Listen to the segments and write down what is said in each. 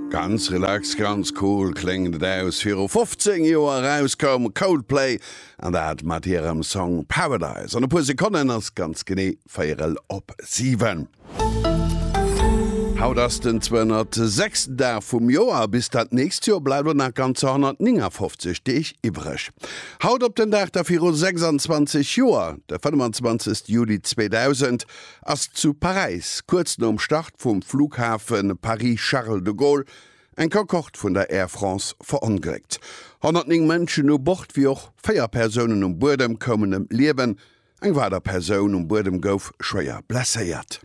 Ganz relax, ganz cool kléngt et aus. Viru 15 Joer eraus koum Coldplay, an dat mat hirem Song Paradise. An e puer Sekonnen ass ganz genee véierel op siwen. Haut ass den 206. Dag vum Joer, a bis dat nächst Joer bleift elo nach ganzer 159 Deeg iwwereg. Haut op den Dag der viru 26 Joer, de 25. Juli 2000, ass zu Paräis, kuerz nom Start vum Flughafe Paris-Charles de Gaulle, eng Concorde vun der Air France verongléckt. 109 Mënschen u Bord wéi och véier Persounen um Buedem koumen ëm d'Liewen, eng weider Persoun um Buedem gouf schwéier blesséiert.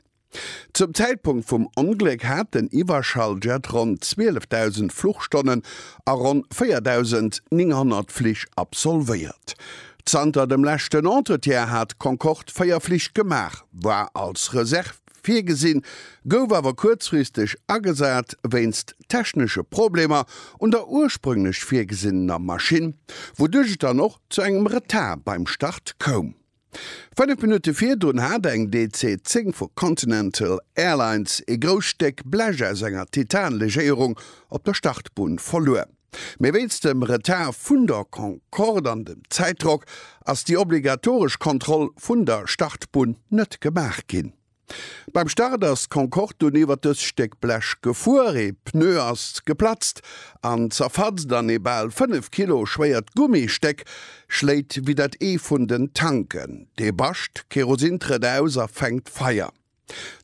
Zum Zäitpunkt vum Ongléck hat den Iwwerschalljet ronn 12.000 Fluchstonnen a ronn 4.900 Flich absolvéiert. Zanter dem leschten Entretien hat d'Concorde véier Flich gemaach, war als Reserv virgesinn, gouf awer kuerzfristeg agesat wéinst technesche Problemer un der ursprünglech virgesinnener Maschinn, wouduerch et dann och zu engem Retard beim Start koum. Fënnef Minutte virdrun hat eng DC 10 vu Continental Airlines ee grousst Stéck Blech aus enger Titan-Legéierung op der Startbunn verluer. Mee wéinst dem Retard vun der Concorde an dem Zäitdrock ass déi obligatoresch Kontroll vun der Startbunn net gemaach ginn. Beim Start ass d'Concorde dunn iwwer dëst Stéck Blech gefuer, ee Pneu ass geplatzt an zerfatzt an ee bal 5 Kilo schwéiert Gummistéck schléit wéi dat Ee vun den Tanken. Dee Bascht Kerosin trëtt aus a fänkt Feier.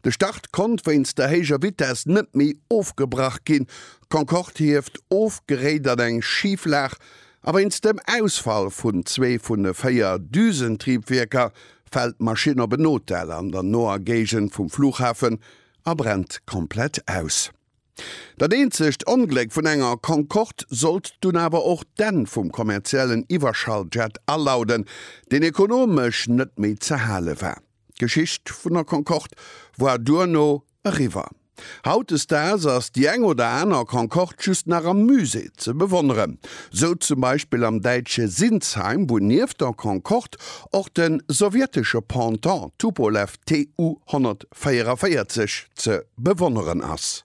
De Start konnt wéinst der héijer Vitess net méi ofgebrach ginn. D'Concorde hieft of, geréit an eng Schiflag a wéinst dem Ausfall vun zwee vun de véier Düsentriebwierker fält d'Maschinn op en Hotel an der noer Géigend vum Flughafen a brennt komplett aus. Dat eenzegt Ongléck vun enger Concorde sollt dunn awer och d'Enn vum kommerziellen Iwwerschalljet alauden, deen ekonomesch net méi ze hale war. D'Geschicht vun der Concorde war duerno eriwwer. Hautdesdaags ass déi eng oder aner Concorde just nach am Musée ze bewonneren. Sou zum Beispill am däitsche Sinsheim, wou nieft der Concorde och de sowjetesche Pendant Tupolew Tu 144 ze bewonneren ass.